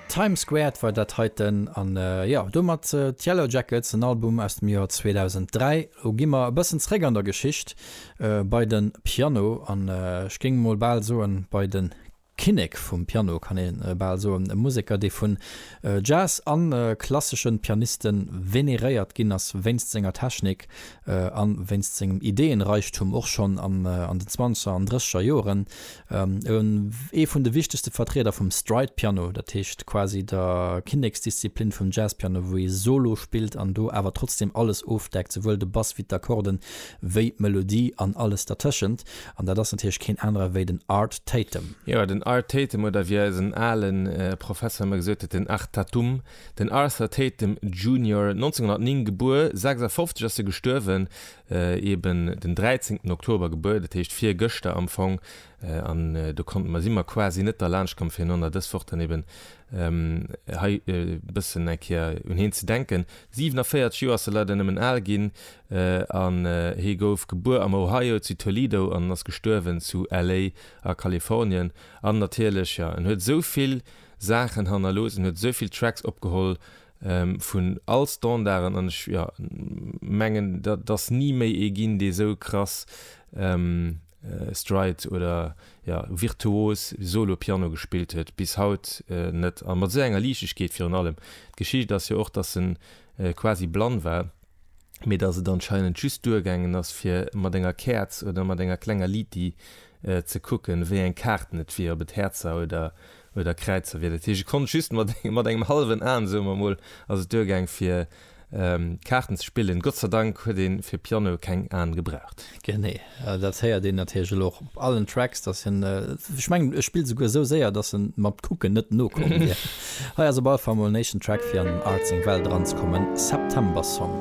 Time Squared war dat heiten an jo domat d'Yellow Jackets, en Album aus dem Joer 2003. Lo gi mer e bëssen zréck an der Geschicht bei de Piano an ech géing emol bal soen bei de Kinnek vum Piano, kann ee bal soen, e Museker dee vun Jazz a klassesche Pianiste veneréiert ginn ass wéinst senger Technik a wéinst sengem Ideeënreichtum och schonn an den Zwanzeger an Drësseger Joren. Ee vun de wichtegste Vertrieder vum Stride Piano, dat heescht quasi der Kinneksdisziplin vum Jazzpiano, wou ee Solo spillt an do awer trotzdeem alles ofdeckt, souwuel de Bass wéi d'Akkorden, wéi d'Melodie an alles dertëschent. An dat ass natierlech keen anere wéi den Art Tatum. Jo, den Art Tatum, oder wéi eisen ale Professor ëmmer gesot huet, den Artatum, den Arthur Tatum Junior, 1909 gebuer, 56 ass e gestuerwen, eben den 13 Oktober gebuer, dat heescht virgëschter am Fong, an do konnte mer, si mer quasi net derlaanscht komm fir enonner dës Woch dann eben hei e bëssen eng Kéier un hien ze denken. 47 Joer ass e leider nëmmen al ginn an hie gouf gebuer am Ohio zu Toledo an ass gestuerwen zu LA a Kalifornien. An natierlech, jo, en huet esou vill Saachen hannerlooss, en huet esou vill Tracks opgeholl, vun all Standarden an ech mengen et ass ni méi ee ginn dee sou krass Stride oder virtuos Solo Piano gespillt huet, bis haut net, a mat sou enger Liichtegkeet virun allem. D'Geschicht ass jo och dass en quasi blann war, mee dass et anscheinend just duergaangen ass fir mat enger Käerz oder mat enger klenger Liti ze kucken, wéi eng Kaarten et wier, ob et Häerzer oder oder Kräizer wier. Dat heescht, ech konnt just mat mat engem hallwen Aen, soe mer emol, ass et duergaang, fir Kaarten ze spillen. Gott sei Dank huet ee fir Piano keng Aen gebraucht. Genee. Dat héiert een natierlech elo och op allen Tracks, dass hien, ech mengen, e spillt esouguer esou séier, dass en mat Kucken net nokomm wier. Hei ass op alle Fall emol en éischten Track, fir an den Art seng Welt eranzekommen, September Song.